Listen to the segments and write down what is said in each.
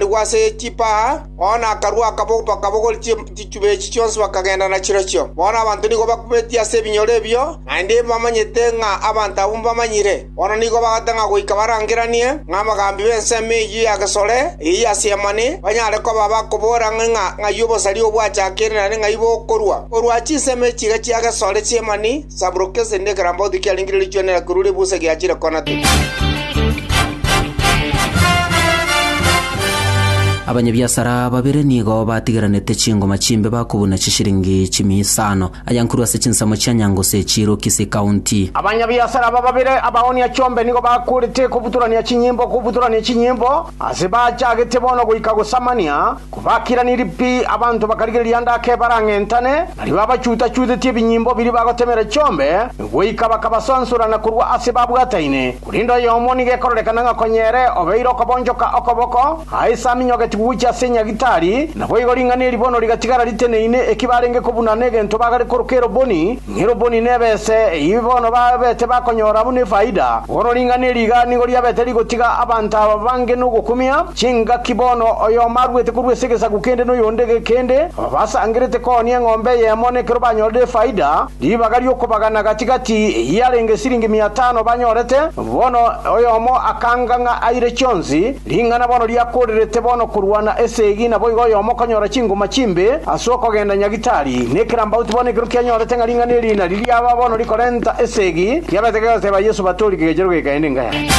Naboigo ase chipaha, bono nakarua akaba bakabogori chichube echi chionsi bakagenda nachirochio. Bono abanto nigo bakubetie ase ebinyoro ebio, naende mbamanyete ng'a abanto abwo mbamanyire. Bono nigo bagoteba ng'a goika barangeranie ng'a abagambi b'ensemo eyio y'agesore eye y'Aseemani banyare koba bakobora ang'e ng'a ng'ai obosaria oo bwachakire naende ng'ai bokorua korwa chinsemo echi iga chi'agesore chi'Aseemani, Sabulokesi ne Karambauti kiarenge riri chwene na korwa Rebusa giachire kona te. Abanyabiasara babere nigo batigeranete chingoma chimbe bakobuna chishiringi chimia isano. Aya nkorwa ase chinsemo chia Nyangose echiirwe Kisii County. Abanyabiasara aba babere abaonia chombe nigo bakorete kobutorania chinyimbo kobutorania chinyimbo ase bachagete bono goika gosamania Kobakiraniri pi, abanto bakarigereria ndake barang'entane, baria babachuta-chutetie ebinyimbo biria bagotemera chiombe, goika bakabasansora na korwa ase babwataine, korende oyomo nigo ekororekana ng'a konya ere obeire okobonchoka okoboko, aye saminyogetigwe gochia ase enyagitari, naboigo ring'ana eri bono rigatigara riteneine eki barenge kobuna negento bagare koroka eroboni, Nero boni nebese eyio bono babete bakonyora buna efaida, bono ring'ana eri iga nigo riabete rigotiga abanto aba bange nogokumia chingaki bono oyomo aruete korwa ase egesaku kende noyonde gekende, aba basangerete koonia eng'ombe eyemo na ekero banyorire efaida, ribaga ri'okobagana gati-gati eyio yarenge esiringi mia tano banyorete, bono oyomo akanga ng'a aire chionsi, Ring'ana bono riakoorerete bono korwana esegi, naboigo oyomo okonyora chingoma chimbe ase okogenda nyagitari, na ekerambauti bono ekero kianyorete ng'a ring'ana eri nario riaba bono rikorenta esegi, kiabete kegoteeba Yeso batori kegechero gekaenda enka yaye.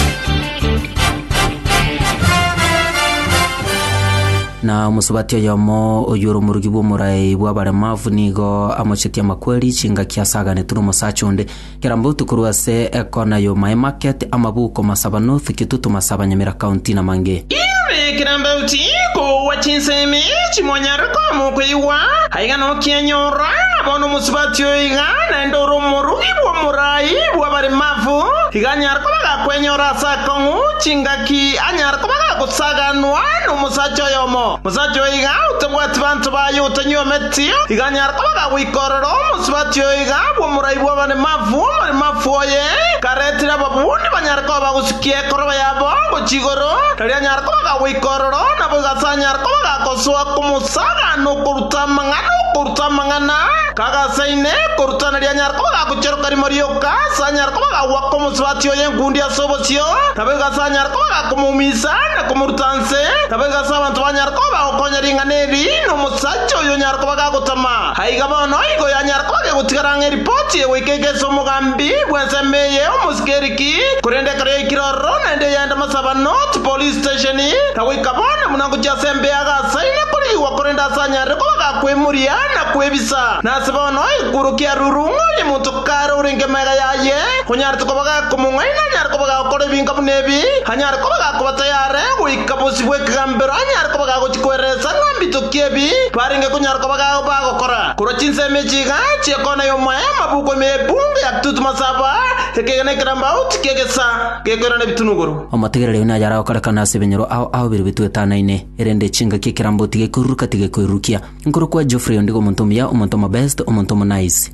Na omosubati oyomo oyio ore omorogi bw'omorai bw'abaremavu nigo amochetie amakweri chingaki ase aganetwe n'omosacha onde, Kera mbotu korwa ase ekona y'omoemarket, amabuko, masabano, thukitu, tumasaba, nyamera, kaunti, na mange. Inwe kera mbauti koua chinsemi chimonyare koamwa koigwa, aiga nokianyorwa, na bono omosubati oyo iga naende ore omorugi bw'omorai bw'abaremafu, iga anyare koba gakwenyora ase akong'u chingaki, anyare koba gagosaganwa nomosacha oyomo. Omosacha oyo iga otabwati banto baye otanywa emeti, iga anyare koba agagoika ororo omosubati oyo iga bw'omorai bw'abaremafu, omoremafu oye karetire ababuni banyare koba bagosikia ekoroba yabo gochia igoro, tari anyare koba agagoika ororo, naboigo ase anyare koba agagosoa komosagaana okoruta amang'ana, okoruta amang'ana kagasaine, okoruta nario anyare koba agagocheroka rimo rioka, ase anyare koba agagwaka omosubati oyo enkundi ase obosio, naboigo ase anyare koba agakomoumisa na komoruta inse. Gose nabo egasa abanto banyare koba bagokonya ring'ana eri nomosacha oyo onyare koba gagotama. Aiga bono igo yanyare koba gegotigara ng'a eripoti egoika egese omogambi bw'ensemo eye omosike ere ki, korende ekero yaikire ororo naende eyende masabano chipolice station, na goika bono buna ngochia ase embea iga asaine korigigwa korende ase anyarire koba gakwemoria na kwebisa. Na ase bono egekworo kia ruru ng'a onye monto kare orenge megaya aye onyarete koba gakomong'aina anyare koba gagokora ebinka buna ebi, Anyare koba gakoba tayare goika bosio bw'ekegambero, anyare koba gagochia koereesa ng'a mbitokie ebi barenge konyara koba bagokora, korwa chinsemo echi iga chi'ekona y'omoyo, amabuku ime y'epungu ya Tutu Masaba, ekegena ekerambauti ki'egesa gekoirana ebitunuguru. Omotigereri oyio naye aragokorekana ase ebinyoro ao ao biria bitwetanaine, erende chingaki ekerambauti gekoiruruka tigekoirurukia. Nkorokwa Geoffrey ondigo omonto omuya, omonto omobest, omonto omonice.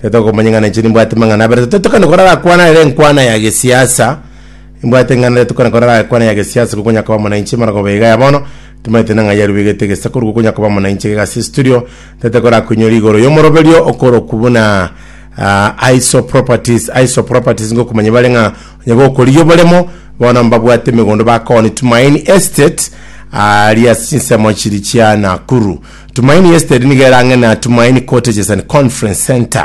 Tari tokomanya ing'ana inche nimbwate mang'ana abere. Tari tokane kora rakwana ere enkwana ya gesiasa. Nimbwate ing'ana ere tokane kora rakwana ya gesiasa gokonya koba muna inche mara koba iga ya bono. Timaete nang'ai yarubegete egesakoru gokonya koba muna inche gigase estudio. Tari tokora koinywa rigoro yomoroberio okorokwa buna ah, Iso Properties. Iso Properties ngokumanya bare ng'a onye gokorigia oboremo bono mbabwate emegondo bakooni Tumaini Estate aria ase chinsemo chiri chia Nakuru. Tumaini Estate nigo erang'ene na Tumaini Cottages and Conference Centre.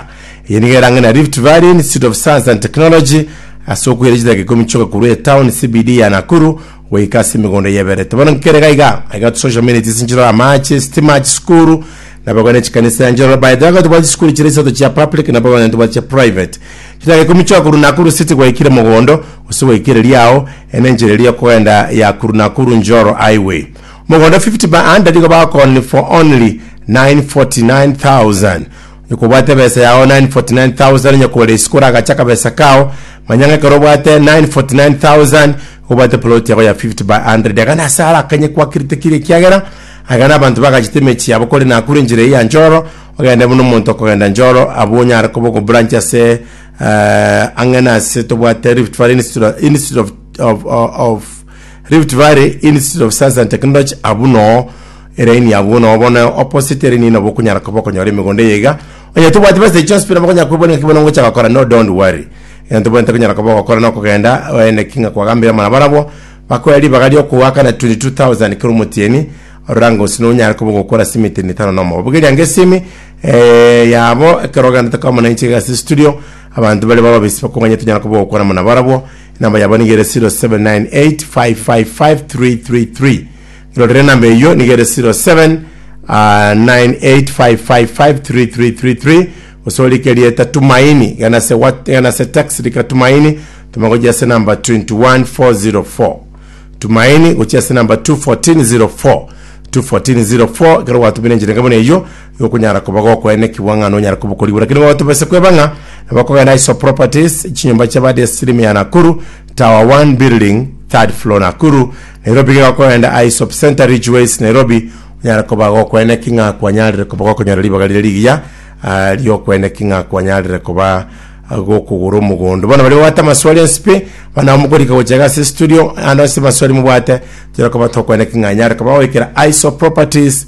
Eye nigo erang'ene na Rift Valley Institute of Science and Technology ase okoira chidaka ikomi chioka korwa etown CBD ya Nakuru goika ase emegondo eyeberete. Bono nkere gaiga, aiga social amenities nchirore amache, sitima, chisukuru, nabo iga ne chikanisa nchirore. By the way, iga tobwate chisukuru chire isato chia public nabo iga onye tobwate chia private. Chidaka ikomi chioka korwa Nakuru City gwaikire Mogondo gose gwaika ereria ao, eye nenchera eria yokogenda ya korwa Nakuru Njoro Highway. Mogondo fifty ba under nigo bakoonire for only nine forty nine thousand. Onye kobwate ebesa yao nine forty nine thousand onye kore isiko oragache akabesa kao, manya ng'a ekero obwate nine forty nine thousand nigo obwate plot yago ya fifty by hundred. Iga nase are akanye kwakirete keria ekiagera aiga nabanto bagachete emechi yabo kore nakure enchera eyio ya Njoro ogende buna omonto okogenda Njoro abwo onyare koba ogo branch ase ang'e nase tobwate Rift Valley Institute of Institute of of of Rift Valley Institute of Science and Technology abwo noo eraini abwo noo bono opposite eraini nabo okonyara koba okonyora emegondo eye iga onye tobwati base echi hospital bakonyara kwebwana ngaki bono ngocha gokora no don't worry egento tobwate konyara koba ogokora na okogenda oende ki ng'a kwagambire abana barabwo bakoe ribaga riokogoakana 22000 kera omotieni orora ng'a gose nonyare koba ogokora simi etieni etano na omoba bogeria ng'a esimi eh, yabo ekero ogenda tokamana inche iga ase studio abanto bare bababesi bakong'anyete onyara koba ogokwana muna barabwo Enamba yabo nigo ere 0798555333. Rorera enamba eyio nigo ere 0798555333 gose orike erieta Tumaini gana ase what- gana ase text rika Tumaini toma gochia ase enamba 21404. Tumaini gochia ase enamba 21404 21404 ekero gwatumire enchera enke buna eyio Nokonyara koba gokoenekigwa ng'a nonyare koba okorigwa, lakini nigo tobese kweba ng'a nabo okogenda iso properties, chinyomba chia bad stream ya Nakuru, tower one building, third floor Nakuru, Nairobi gega okogenda Aesop Centre Ridgeways Nairobi, onyare koba gokoeneki ng'a kwanyarire koba gokonyora ribaga riria rigiya ah, riokoeneki ng'a kwanyarire koba ah, gokogora omogondo. Bono baria babwate amaswali ense pi, bana abo mokorika gocha iga ase studio, ande onsi amaswali mobwate, tonyare koba tokoeneki ng'a nyare koba goikera Aesop properties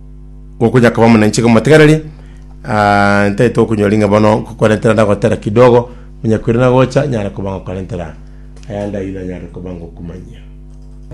gokonya kaba monene inche komotegereria, ah, ntagete gokonyora ring'ana bono nkokorentera ndagotera kidogo, onye kweri nagocha nyare koba ngokorentera ayande ayio nanyare koba ngokumanyia.